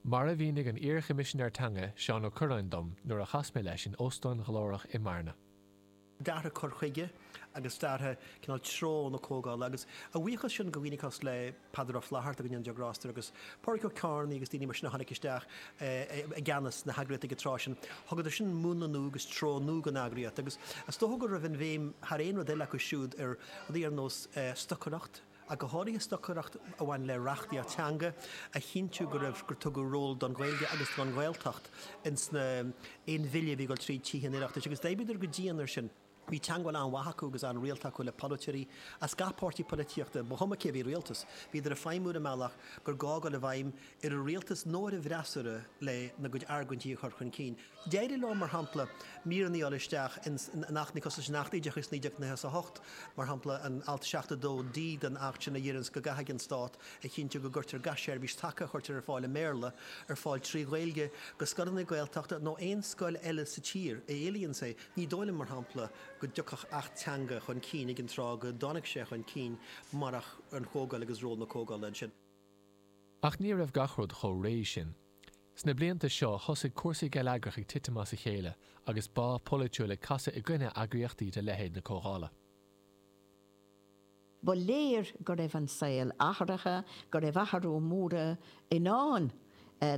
Mar a mhínigh an iar-Choimisinéir Teanga, Seán Ó Cuirreáin dom nuair a chas mé leis in óstán glórach i mBearna. D'athraigh cur chuige agus d'athraigh cineál treo na Comhdhála agus a bhuíochas sin do dhaoine cosúil le Peadar Ó Flatharta go ndéana Dia grásta air agus Pádraig Ó Ceithearnaigh agus daoine mar sin a tháinig isteach i gceannas na heagraíochta ag an tráth sin. Thugadar sin múnla nua agus treo nua don eagraíocht agus is dócha go raibh an bhéim thar aon rud eile acu siúd ar rudaí ar nós stocaireacht ach go háirithe stocaireacht a bhain le reachtaíocht teanga, a chinntiú go raibh, gur tugadh ról don Ghaeilge agus don Ghaeltacht ins na, aon bhille a bhí ag dul tríd Tithe an Oireachtais. Agus d'oibríodar go dian ar sin. Bhí teangmháil an-mhaith acu agus an-rialta acu le polaiteoirí as gach páirtí poilitíochta, ba chuma cé a bhí i rialtas. Bhíodar ag feidhmiú ar an mbealach gur ghá dul i bhfeidhm ar an rialtas nó ar an bhfreasúra lena gcuid argointí a chur chun cinn. D'éirigh leo, mar shampla, míreanna a fháil isteach in achtanna cosúil leis an Acht Oideachais 1998, mar shampla an alt 7(2)(d) den Acht sin a dheireanns go gcaithfidh an Stát a chinntiú go gcuirtear gach seirbhís taca a chuirtear ar fáil i mBéarla ar fáil trí Ghaeilge do scoileanna Gaeltachta nó aon scoil eile sa tír a éilíonns é. Ní dóigh liom, mar shampla, go dtiocfadh Acht Teanga chun cinn ag an tráth go dtáinig sé chun cinn marach an Chomhdháil agus ról na Comhdhála ansin. Ach ní raibh gach rud chomh réidh sin Sna blianta seo thosaigh cúrsaí geilleagrach ag titim as a chéile agus bá polaitiúil ag casadh i gcoinne eagraíochtaí de leithéid na Comhdhála. Ba léir go raibh an saol athraithe, go raibh athrú mór i ndán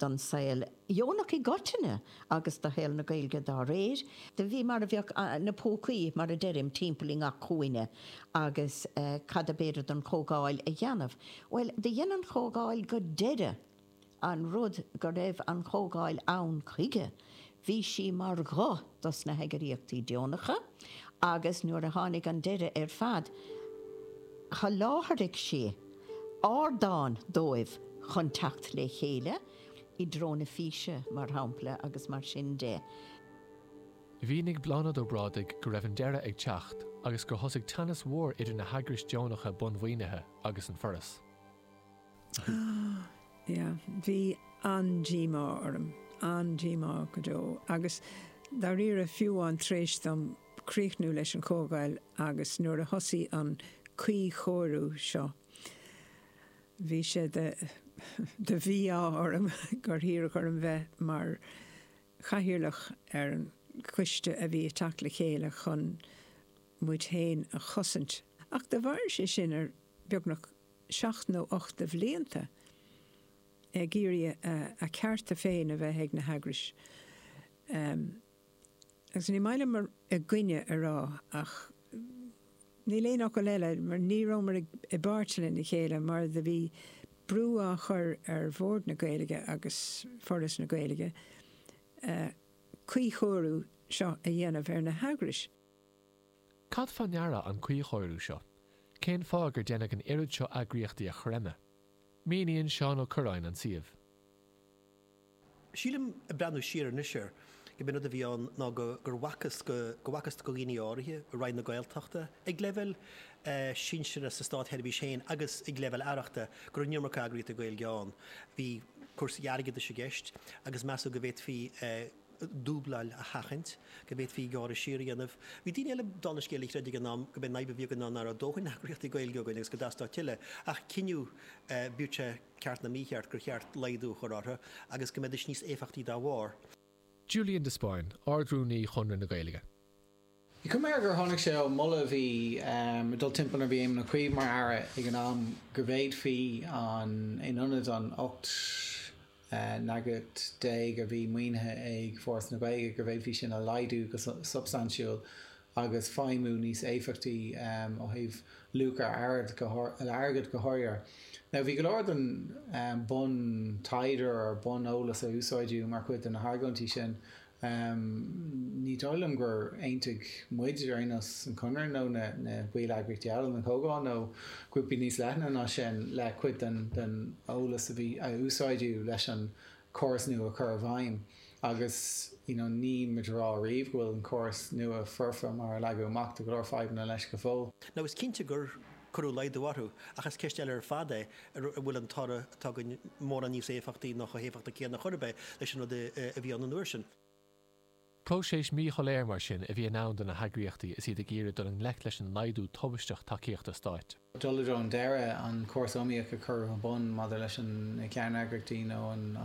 don saol dheonach i gcoitinne agus do shaol na Gaeilge dá réir. Bhí mar a bheadh na púcaí, mar a deirim, timpeall i ngach cúinne agus cad ab fhéidir don Chomhdháil a dhéanamh? Bhuel, do dhein an Chomhdháil go deireadh! An rud go raibh an Chomhdháil ann chuige, bhí sí mar ghuth dos na heagraíochtaí deonacha agus nuair a tháinig an deireadh ar fad, sholáthraigh sí ardán dóibh chun teacht le chéile, I dTreo na Físe, mar shampla, agus mar sin de. Mhínigh Bláthnaid Ó Brádaigh go raibh an deireadh ag teacht agus gur thosaigh teannas mhór idir na heagrais deonacha bunmhaoinithe agus an Foras. Yeah, bhí an-díomá orm, an-díomá go deo agus dáiríre fiú amháin tar éis dom críochnú leis an Chomhdháil agus nuair a thosaigh an cuíchóiriú seo, bhí sé de, de mhí-ádh orm gur hiarradh orm bheith mar chathaoirleach ar an choiste a bhí ag teacht le chéile chun muid féin a chosaint. Ach do mhair sé sin ar beagnach seacht nó ocht de bhlianta ag iarraidh a gcearta féin a bheith ag na heagrais agus ní maith liom "i gcoinne" a rá ach níl aon fhocal eile mar ní rabhamar i bpáirt lena chéile mar do bhí brú á chur ar Bhord na Gaeilge agus Foras na Gaeilge cuíchóiriú seo a dhéanamh ar na heagrais. Cad fá ndeara an cuíchóiriú seo? Cén fáth gur deineadh an oiread seo eagraíochtaí a chreimeadh? Míníonn Seán Ó Cuirreáin an suíomh. Sílim, ag breathnú siar anois air, gur b'in an rud a bhí ann ná go, gur bhfacthas go, go bhfacthas do dhaoine áirithe i Roinn na Gaeltachta, ag leibhéal sinsearach sa stát-sheirbhís féin agus ag leibhéal aireachta, go raibh an iomarca eagraíochtaí Gaeilge ann. Bhí cúrsaí airgeadais i gceist agus measadh go bhféadfaí, dúbláil a sheachaint, go bhféadfaí gearradh siar a dhéanamh. Bhí daoine eile den scéal a chreid ag an am gurb é an fhadhb a bhí againn ná nach raibh dóthain eagraíochtaí Gaeilge againn agus go dteastódh tuilleadh, ach cinneadh, bíodh sé ceart nó mícheart, gur cheart laghdú a chur orthu agus go mbeidís níos éifeachtaí dá bharr. Julian de Spáinn, Ard-Rúnaí Chonradh na Gaeilge. Measaim gur tháinig sé ó mholadh a bhí ag dul timpeall nuair a bhí Éamon Ó Cuív mar Aire ag an am go bhféadfaí an in ionad an 18 n-eagras a bhí maoinithe ag Foras na Gaeilge, go bhféadfaí sin a laghdú go substaintiúil agus feidhmiú níos éifeachtaí ó thaobh luach ar airgead go háirithe. Now bhí go leor den bun taighde or bun eolas a úsáideadh mar chuid de na hargóintí sin. Ahm, ní dóigh liom gur aontaigh muid ar aon nós, an Conradh nó na balleagraíochtaí eile, an Chomhdháil nó grúpaí níos leithne ná sin, le cuid den den eolas a bhí, a úsáideadh leis an córas nua a chur i bhfeidhm. Agus, you know, níl muid ag rá riamh go bhfuil an córas nua foirfe mar a leagadh amach, tá go leor fadhbanna leis go fóill. Now, is cinnte gur cuireadh laghdú orthu, ach is ceist eile ar fad é an bhfuil an toradh atá againn mórán níos éifeachtaí nó chomh héifeachtach céanna chor ar bith leis an rud a bhí ann an uair sin. Próiseas míshoiléir mar sin a bhí i ndán do na heagraíochtaí is iad ag iarraidh dul i ngleic leis an laghdú tubaisteach tacaíochta stáit. dul i dtreo an deiridh, an córas iomaíoch a cuireadh ar bun maidir leis an na ceanneagraíochtaí nó an.